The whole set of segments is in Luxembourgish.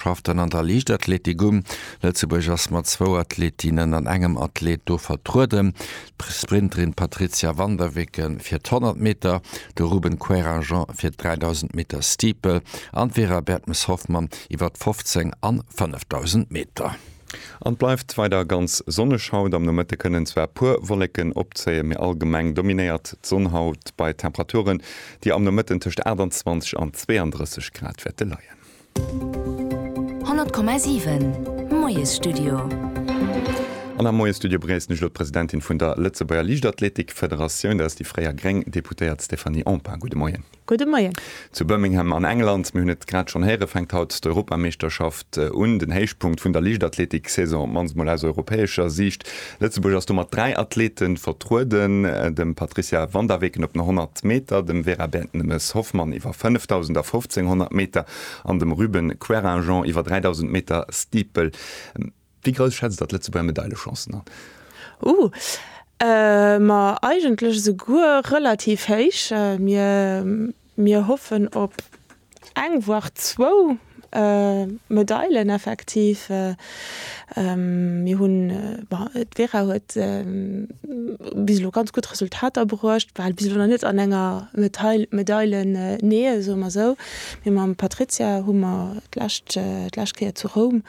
schafft dann an der Liichtathletik um. Lëtzebuerg ass mat zwou Athletinnen an engem Athlet do vertrueden, d'Sprinterin Patrizia van der Weken fir d'Honnert Meter, de Ruben Queyranjean fir d'Dräidausend Meter Steeple an d'Vera Bertmes-Hoffmann iwwer d'Fofzéng an Fënnefdausend Meter. An et bleift weider ganz sonneg haut. Am Nomëtte kënnen zwar puer Wolleken opzéien, mee allgemeng dominéiert d'Sonn haut bei Temperaturen, déi am Nomëtten tëscht 28 an 32 Grad wäerte leien. 100,7 Moiesstudio. An am Moiestudio begréissen ech elo d'Presidentin vun der Lëtzebuerger Liichtathletik-Federatioun, dat ass déi fréier gréng Deputéiert Stéphanie Empain. Gudde Moien. Gudde Moien. Zu Birmingham an England, mir hunn et grad schonn héieren, fänkt haut d'Europameeschterschaft un, den Héichpunkt vun der Liichtathletik-Saison, op d'mannst mol aus europäescher Siicht. Lëtzebuerg ass do mat dräi Athleete vertrueden, dem Patricia Van der Weken op den 100 Meter, dem Vera Bertemes Hoffmann iwwer 5.000 a 1.500 Meter an dem Ruben Querinjean iwwer 3.000 Meter Steeple. Wéi grouss schätzt Der d'Lëtzebuerger Medailechancen an? Uh, ma eigentlech esouguer relativ héich. Mir Mir hoffen op eng, voir zwou Medailen effektiv. Mir hunn, bon, d'Vera huet bis elo ganz gutt Resultater bruecht, war bis elo nach net an enger Medail, Medailen-Nähe, soe mer esou. Mee mam Patrizia hu mer d'lescht, d'lescht Kéier zu Roum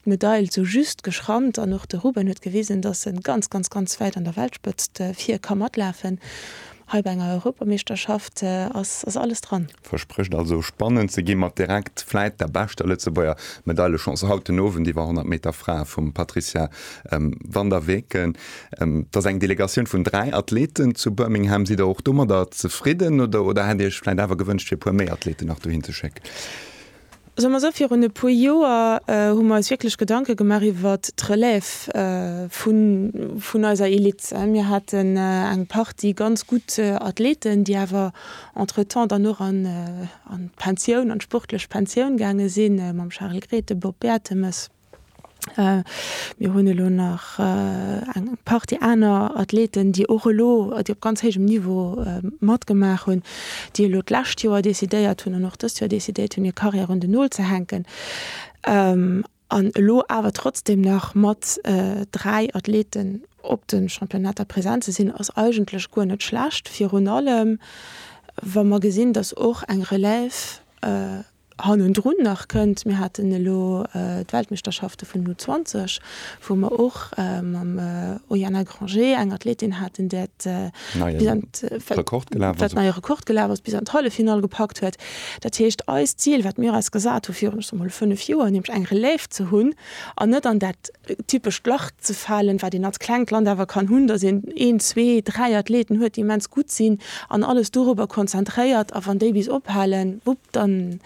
d'Medail sou just geschrammt an och de Ruben huet gewisen, dass e ganz, ganz, ganz wäit an der Weltspëtzt vir ka matlafen. Hei bei enger Europameeschterschaft ass alles dran. Versprécht also spannend ze ginn, mat direkt vläit der beschter Lëtzebuerger Medailechance haut den Owend iwwer 100 Meter Frae vum Patrizia van der Weken. Et ass eng Delegatioun vun dräi Athleten zu Birmingham. Sidd der och domadder zefridden oder hätt Dir Iech vläit awer gewënscht fir e puer méi Athleten nach dohin ze schécken? Soe mer esou, virun e puer Joer hu mer eis wierklech Gedanke gemaach iwwer d'Relève vun eiser Elite. Mir haten eng Partie ganz gutt Athleten, déi awer entretemps dann och an d'Pensioun, an d'sportlech Pensioun gaange sinn, mam Charel Grethen, Bob Bertemes. Mir hunn elo nach eng Partie aner Athleten, déi och elo, déi op ganz héijem Niveau matgemaach hunn, déi elo d'lescht Joer decidéiert hunn an och dëst Joer decidéiert hunn, hir Karriär un den Nol ze hänken an elo awer trotzdem nach mat dräi Athleten op de Championnater present ze sinn, ass eigentlech guer net schlecht. Virun allem, wa mer gesinn, dass och eng Relève hannendrun nach kënnt. Mir haten elo d'Weltmeeschterschafte vun den U 20, wou mer och mam Oyana Granger eng Athletin haten, där et bis an d'Halleffinall gepackt huet. Dat heescht, eist Zil, wat mir eis gesat hu virun, ech soe mol, fënnef Joer, nämlech eng Relève ze hunn an net an dat typescht Lach ze falen, wat een als klengt Land awer kann hunn, dass een een, zwee, dräi Athleten huet, déi immens gutt sinn an alles dorobber konzentréiert. A wann déi bis ophalen, wupp, dann,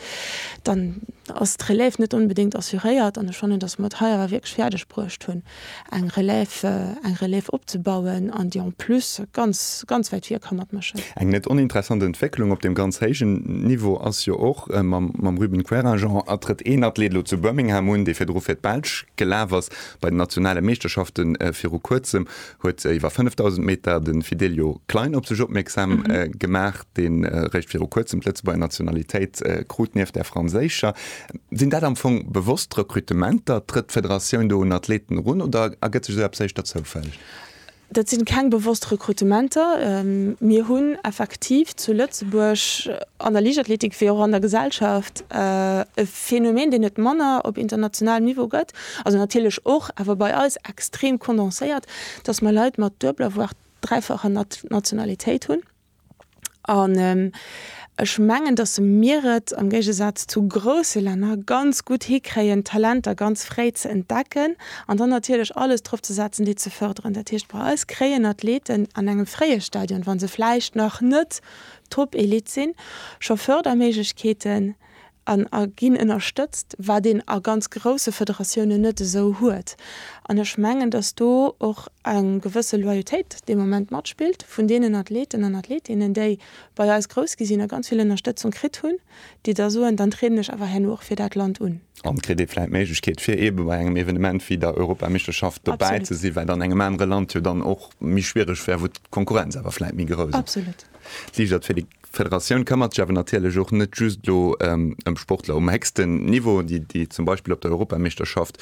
dann ass d'Relève net onbedéngt assuréiert. An ech fannen, dass mer et hei awer wierklech fäerdeg bruecht hunn, eng Relève, eng Relève opzebauen an déi en plus ganz, ganz wäit vir ka matmëschen. Eng net oninteressant Entwécklung op deem ganz héijen Niveau ass jo och mam, mam Ruben Querinjean, a trëtt een Athlet elo zu Birmingham un, dee virdru fir d'Belsch Gelaf ass. Bei den nationale Meeschterschafte viru Kuerzem huet iwwer 5.000 Meter de Fidelio Klein op sech opmierksam gemaach, dee réischt viru Kuerzem d'Lëtzebuerger Nationalitéit krut, nieft där franséischer. Sinn dat am Fong bewosst Rekrutementer? Trëtt d'Federatioun do un Athleten erun oder ergëtt sech esou eppes éischter zoufälleg? Dat si keng bewosst Rekrutementer. Mir hunn effektiv zu Lëtzebuerg an der Liichtathletik wéi och an der Gesellschaft e Phänomen, deen et manner op internationalem Niveau gëtt, also natierlech och, awer bei eis extrem kondenséiert, dass mer Leit mat duebeler, voire dräifacher Nationalitéit hunn. An ech mengen, datt mir et am Géigesaz zu grouse Länner ganz gutt hikréien, d'Talenter ganz fréi ze entdecken an dann natierlech alles drop ze setzen, déi ze fërderen. Dat heescht, bei eis kréien Athleten an engem fréie Stadion, wa se vläicht nach net Top-Elite sinn, scho Fërderméiglechkeeten, an a ginn ënnerstëtzt, wat een a ganz grousse Federatiounen net esou huet. An ech mengen, datt do och eng gewësse Loyautéit dee Moment matspillt vun deenen Athleten an Athletinnen, déi bei eis grouss gi sinn a ganz vill Ënnerstëtzung kritt hunn, déi da soen, dann trieden ech awer herno och fir dat Land un. An kritt ee vläicht d'Méiglechkeet, fir eebe bei engem Evenement wéi der Europameeschterschaft dobäi ze sinn, wat an engem anere Land jo dann och méi schwiereg wär, wou d'Konkurrenz awer vläicht méi grouss ass. Absolut. Liicht athletic. D'Federatioun këmmert sech awer natierlech och net just elo ëm Sportler um héchsten Niveau, déi déi zum Beispill op der Europameeschterschaft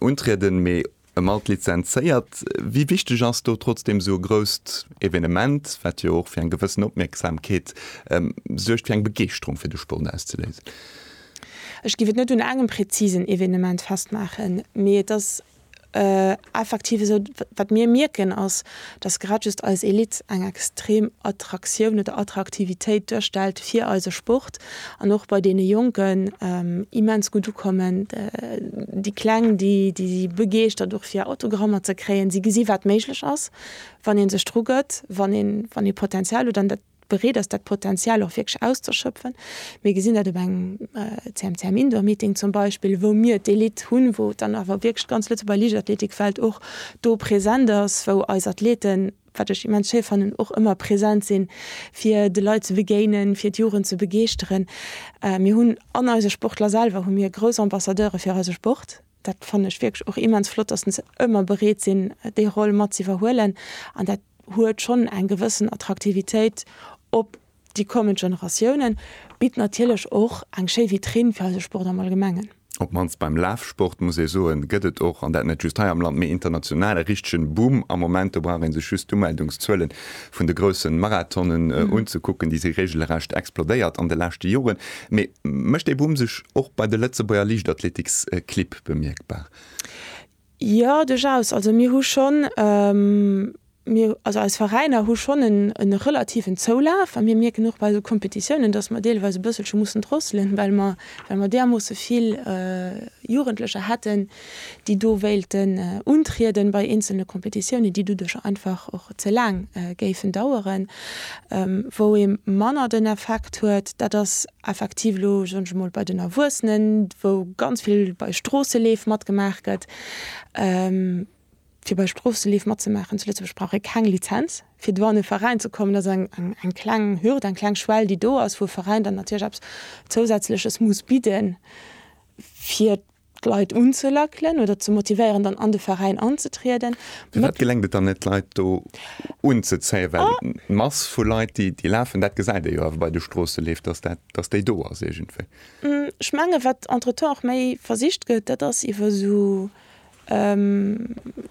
untrieden, mee ëm all d'Lizenzéiert. Wéi wichteg ass do trotzdeem esou e grousst Evenement, wat jo och fir eng gewëssen Opmierksamkeet suergt, fir eng Begeeschterung fir de Sport auszeléisen? Ech géif et net un engem prezisen Evenement festmaachen, mee et ass Effektiv esou, wat mir mierken ass, datt grad just eis Elite eng extrem Attraktioun oder Attraktivitéit duerstellt fir eise Sport an och bei deene Jonken immens gutt ukommen. Déi Kleng, déi si begeeschtert och fir Autogrammer ze kréien. Si gesi wat méiglech ass, wann ee sech drugëtt, wann ee Potenzial huet an dat. bereet ass dat Potenzial och wierklech auszeschöpfen. Mir gesinn dat op engem CMCM Indoor Meeting zum Beispill, wou mir d'Elite hunn, wou dann awer wierklech d'ganz Lëtzebuerger Liichtathletikfeld och do present ass, wou eis Athleten, wat ech immens schéi fannen, och ëmmer present sinn, fir de Leit ze begéinen, fir d'Jugend ze begeeschteren. Mir hunn an eise Sportler selwer hu mir grouss Ambassadeure fir eise Sport. Dat fannen ech wierklech och immens flott, dass se ëmmer bereet sinn, déi Roll mat ze iwwerhuelen. An dat huet schonn eng gewëssen Attraktivitéit op déi kommend Generatiounen, bitt natierlech och eng schéi Vitrinn fir eise Sport am Allgemengen. Op d'mannst beim Lafsport, muss ee soen, gëtt et och, an dat net just hei am Land, mee international, e richtegen Boom am Moment. Do brauch ee sech just d'Umeldungszuelen vun de groussen Marathonen unzekucken, déi si regelrecht explodéiert an de leschte Joren. Mee mécht dee Boom sech och bei de Lëtzebuerger Liichtathletiksequipe bemierkbar? Jo, duerchaus. Also mir hu schonn, mir, also eis Veräiner hu schonn e relativen Zoulaf a mir mierken och bei esou Kompetitiounen, datt mer deelweis e bësselche mussen drosselen, well mer, well mer därmoosse vill Jugendlecher hätten, déi do wéilten untrieden bei eenzelne Kompetitiounen, déi doduercher einfach och ze laang géifen daueren, wou ee manner den Effekt huet. Dat ass effektiv elo, soen ech emol, bei den Erwuessenen, wou ganz vill bei Stroosseleef matgemaach gëtt. Fir bei Stroosseleef matzemaachen zu Lëtzebuerg brauch ee keng Lizenz. Fir do an e Veräin ze kommen, ass eng kleng Hürd, eng kleng Schwell, déi do ass, wou e Veräin dann natierlech eppes Zousätzleches muss bidden, fir d'Leit unzelackelen oder ze motivéieren, dann an de Veräin anzetrieden. Firwat geléngt et dann net, d'Leit do unzezéien? Well d'Mass vu Leit, déi lafen, dat gesäit ee jo awer bei de Stroosseleef, dass dat, dass déi do ass iergendwéi. Ech menge wat entretemps och méi versicht gëtt, dat ass iwwer esou,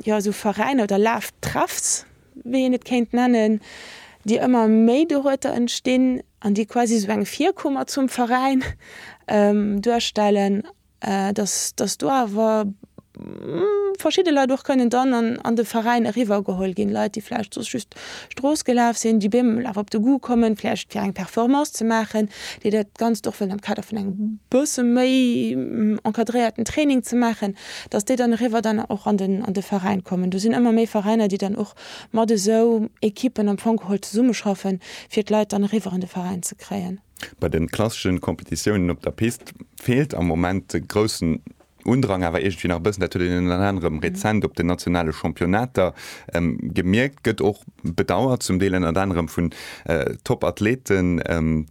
jo esou Veräiner oder Laftreffs, wéi een et kéint nennen, déi ëmmer méi dorueter entstinn an déi quasi esou eng Virkuer mat zum Veräin duerstellen, datt datt do awer verschidde Leit och kënnen dann an de Veräin eriwwergeholl ginn, Leit déi vläicht soss just Strooss gelaf sinn, déi bemol awer op de Goût kommen, vläicht fir eng Performance ze maachen, déi dat Ganzt och wëllen am Kader vun engem bësse méi encadréierten Training ze maachen. datt déi dann eriwwer dann och an den an de Veräin kommen. Do sinn ëmmer méi Veräiner, déi dann och mat esou Equipen am Fong geholl zesummeschaffen, fir d'Leit dann eriwwer an de Veräin ze kréien. Bei de klassesche Competitiounen op der Pist feelt am Moment de groussen Undrang awer iergendwéi nach e bëssen. Dat huet een ënner anerem rezent op den nationale Championnater Gemierkt gëtt och, bedauert zum Deel ënnert anerem vun Top-Athleten,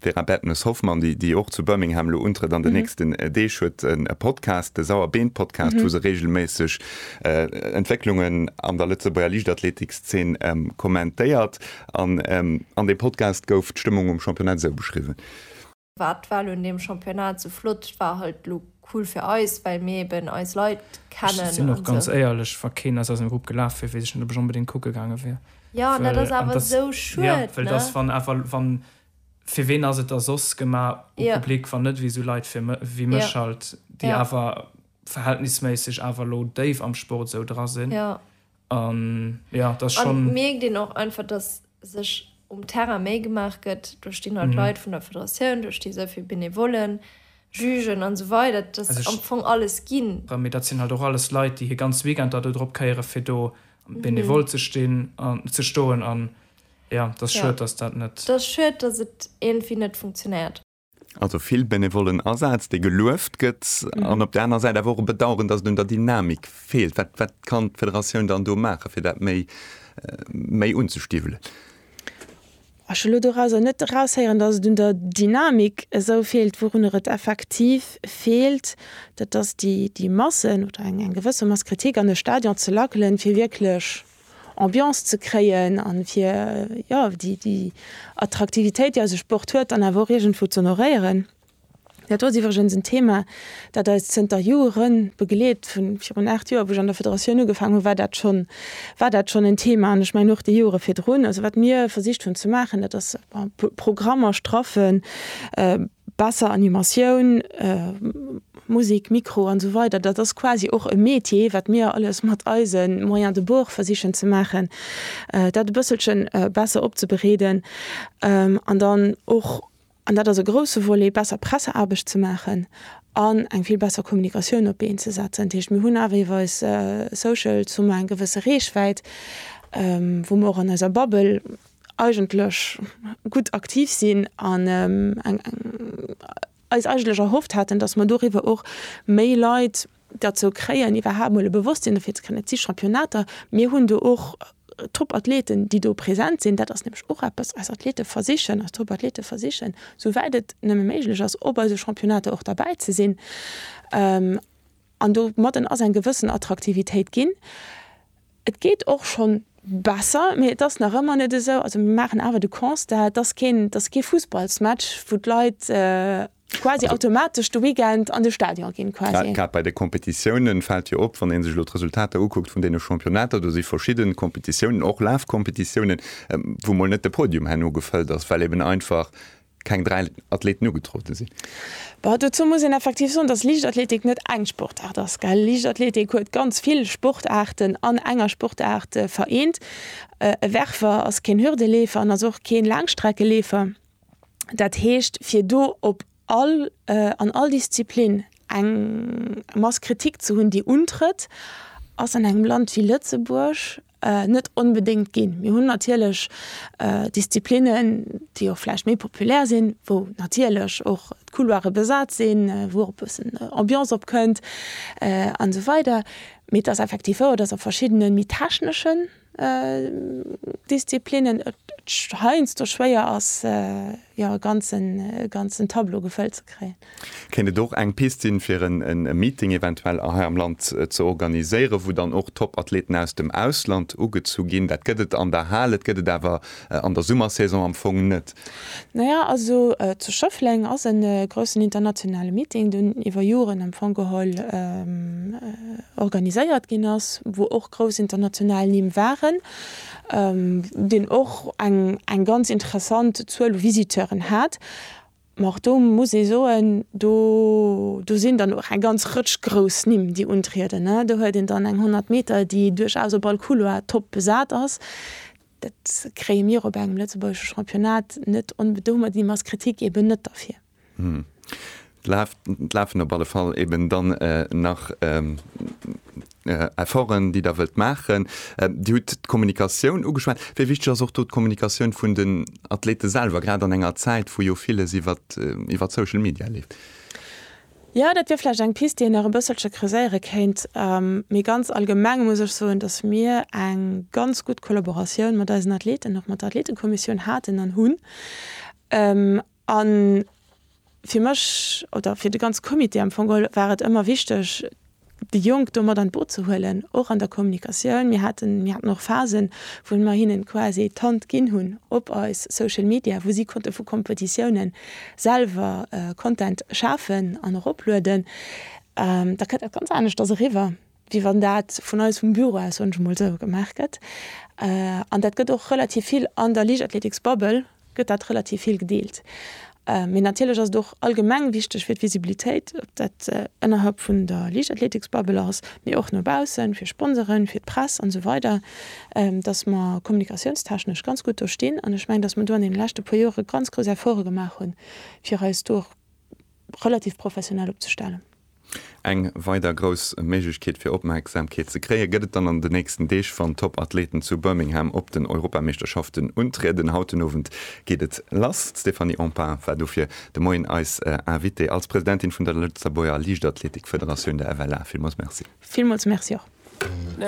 Vera Bertemes-Hoffmann, déi och zu Birmingham elo untrëtt an den nächsten Deeg, huet e Podcast, de Sauer Been Podcast, wou se reegelméisseg Entwécklungen an der Lëtzebuerger Liichtathletik-Szene kommentéiert. An deem Podcast gouf d'Stëmmung um Championnat esou beschriwwen. Wat war lo un deem Championnat sou flott? Et war halt lo cool fir eis, well mir eben eis Leit kennen an sou. Ech sinn och ganz éierlech, wa keen aus eisem Grupp gelaf wier, weess ech net, ob ech onbedéngt kucke gaange wier. Jo, an dat ass awer esou schued, ne? Well dass, wann awer, wann, fir ween ass et da soss gemaach, u Public, wann net ewéi sou Leit wéi mech halt, déi awer verhältnisméisseg awer lo déif am Sport esou dra sinn. An ja, dat ass schonn. An et mierkt een och einfach, dass sech um Terrain méi gemaach gëtt duerch déi nei Leit vun der Federatioun, duerch déi souvill Benevollen, Jugen an esou weider. Dat ass am Fong alles ginn. Mee dat sinn halt och alles Leit, déi hir ganz Weekender do drop kéieren, fir do benevol ze stinn, ze stoen. An ja, dat ass schued, dass dat net. Dat ass schued, dass et iergendwéi net funktionéiert. Also vill benevollen Asaz, dee gelueft gëtt an op der aner Säit awer och e Bedauern, datt et un der Dynamik feelt. Wat wat kann d'Federatioun dann do maachen, fir dat méi méi unzestiwwelen? Ech wëll elo dorauser net eraushéieren, datt et un der Dynamik esou feelt. Wourunner et effektiv feelt, dat ass déi déi Massen oder eng eng gewësse Mass Kritik an e Stadion ze lackelen, fir wierklech Ambiance ze kréien an fir jo déi Attraktivitéit déi eise Sport huet dann awer och iergendwou z'honoréieren. Dat ass iwwregens en Thema dat eis zënter Jore begleet. Vu virun 8 Joer wou ech an der Federatioun ugefaangen hunn war dat schonn war dat schonn en Thema an ech mengen och déi Jore virdrun. Also wat mir versicht hunn ze maachen dat ass Programmer straffen, Besser Animatioun, Musik, Mikro an esou weider, dat ass quasi och e Metier, wat mir alles mat eise Moyens de bord versichen ze maachen, dat e bësselche besser opzebereeden. An dann och, an dat ass e grouse Volet, besser Presseaarbecht ze maachen an eng vill besser Kommunikatioun op d'Been ze setzen. Dat heescht, mir hunn awer iwwer eis Socials hu mer eng gewësse Reechwäit, wou mer och an eiser Bubble, eigentlech gutt aktiv sinn an eis eigentlech erhofft haten, dass mer doriwwer och méi Leit derzou kréien, iwwerhaapt emol e Bewosstsinn dofir ze kréien, et si Championnater, mir hunn do och Topathleten, déi do present sinn. Dat ass nämlech och eppes, eis Athlete versichen, eis Topathlete versichen, souwäit et nëmme méiglech ass, op eise Championnater och derbäi ze sinn. An domadden ass eng gewëssen Attraktivitéit ginn. Et geet och schonn besser, mee et ass nach ëmmer net esou, also mir maachen awer de Constat, et ass keen, et ass kee Fussballsmatch, wou d'Leit quasi automatesch de Weekend an de Stadion ginn quasi. Grad bei de Competitiounen fält jo op, wann ee sech elo d'Resultater ukuckt vun deene Championnater, do si verschidden Competitiounen, och Lafcompetitiounen, wou mol net de Podium herno gefëllt ass, well eben einfach keng dräi Athleten ugetroote sinn. Bon, dozou muss een effektiv soen, dass Liichtathletik net eng Sportaart ass, gell. Liichtathletik huet ganz vill Sportaarten an enger Sportaart vereent. E Werfer ass keen Hürdeleefer an ass och keen Laangstreckeleefer. Dat heescht, fir do op all, an all Disziplin eng Mass Kritik ze hunn, déi untrëtt, ass an engem Land wéi Lëtzebuerg, Net onbedéngt ginn. Mir hunn natierlech Disziplinnen, déi och vläicht méi populär sinn, wou natierlech och d'Couloire besat sinn, wou och e bëssen Ambiance opkënnt an esou weider. Mee et ass effektiv wouer, datt a verschiddene méi techneschen Disziplinnen et heiansdo schwéier ass, jo e ganzen e ganzen Tableau gefëllt ze kréien. Kéint et och eng Piste sinn, fir en e Meeting eventuell hei am Land ze organiséieren, wou dann och Top-Athleten aus dem Ausland ugezu ginn? Dat gëtt et an der Hal, et gëtt et awer an der Summersaison am Fong net. Naja, also zu Schëffleng ass e groussen internationale Meeting, deen iwwer Joren am Fong geholl organiséiert ginn ass, wou och grouss international Nimm waren. deen och eng ganz interessant Zuel u Visiteuren hat, ma och do muss ee soen, do sinn dann och eng ganz Rëtsch grouss Nimm, déi untrieden. Do huet een dann eng 100 Meter, déi duerchaus op all Couloir top besat ass. Dat kréie mir op engem lëtzebuergesche Championnat net onbe. Do hu mer déi Masskritik eben net derfir. Et lafen op alle Fall eben dann nach Efforten, déi Der wëllt maachen. Dir hutt d'Kommunikatioun ugeschwat. Wéi wichteg ass och do d'Kommunikatioun vun den Athlete selwer, grad an enger Zäit, wou jo villes iwwer d'Social Media leeft? Jo, dat wier vläicht eng Pist, déi een nach e bësselche creuséiere kéint. Mee ganz allgemeng muss ech soen, dass mir eng ganz gutt Kollaboratioun mat eisen Athleten, och mat der Athletekommissioun haten an hunn. A fir mech, oder fir de ganze Comité am Fong geholl, war et ëmmer wichteg, déi Jonk do mat an d'Boot ze huelen, och an der Kommunikatioun. Mir haten, mir haten och Phasen, wou mer hinnen quasi d'Hand ginn hunn op eis Social Media, wou si konnte vu Kompetitiounen selwer Content schafen an eroplueden. Da kënnt dat ganz aneschters eriwwer. wéi wann dat vun eis vum Büro aus, soen ech emol esou, gemaach gëtt. An dat gëtt och relativ vill an der Liichtathleetiksbubble gëtt dat relativ vill gedeelt. Mee natierlech ass et och allgemeng wichteg fir d'Visibilitéit, ob dat ënnerhalb vun der Liichtathleetiksbubble ass, mee och no baussen, fir Sponseren, fir d'Press an esou weider, datt mer kommunikatiounstechnesch ganz gutt do stinn. An ech mengen, datt mer do an deene leschte puer Jore ganz grouss Efforte gemaach hunn, fir eis do och, relativ professionell opzestellen. Eng weider grouss Méiglechkeet fir Opmerksamkeet ze kréie gëtt et dann an de nächsten Deeg, wann d'Top-Athleten zu Birmingham op den Europameeschterschaften untrieden. Haut den Owend geet et lass. D'Stéphanie Empain war dofir de Moien eis Invitée als Presidentin vun der Lëtzebuerger Liichtathletik-Federatioun, der FLA. Villmools Merci. Villmools Merci och.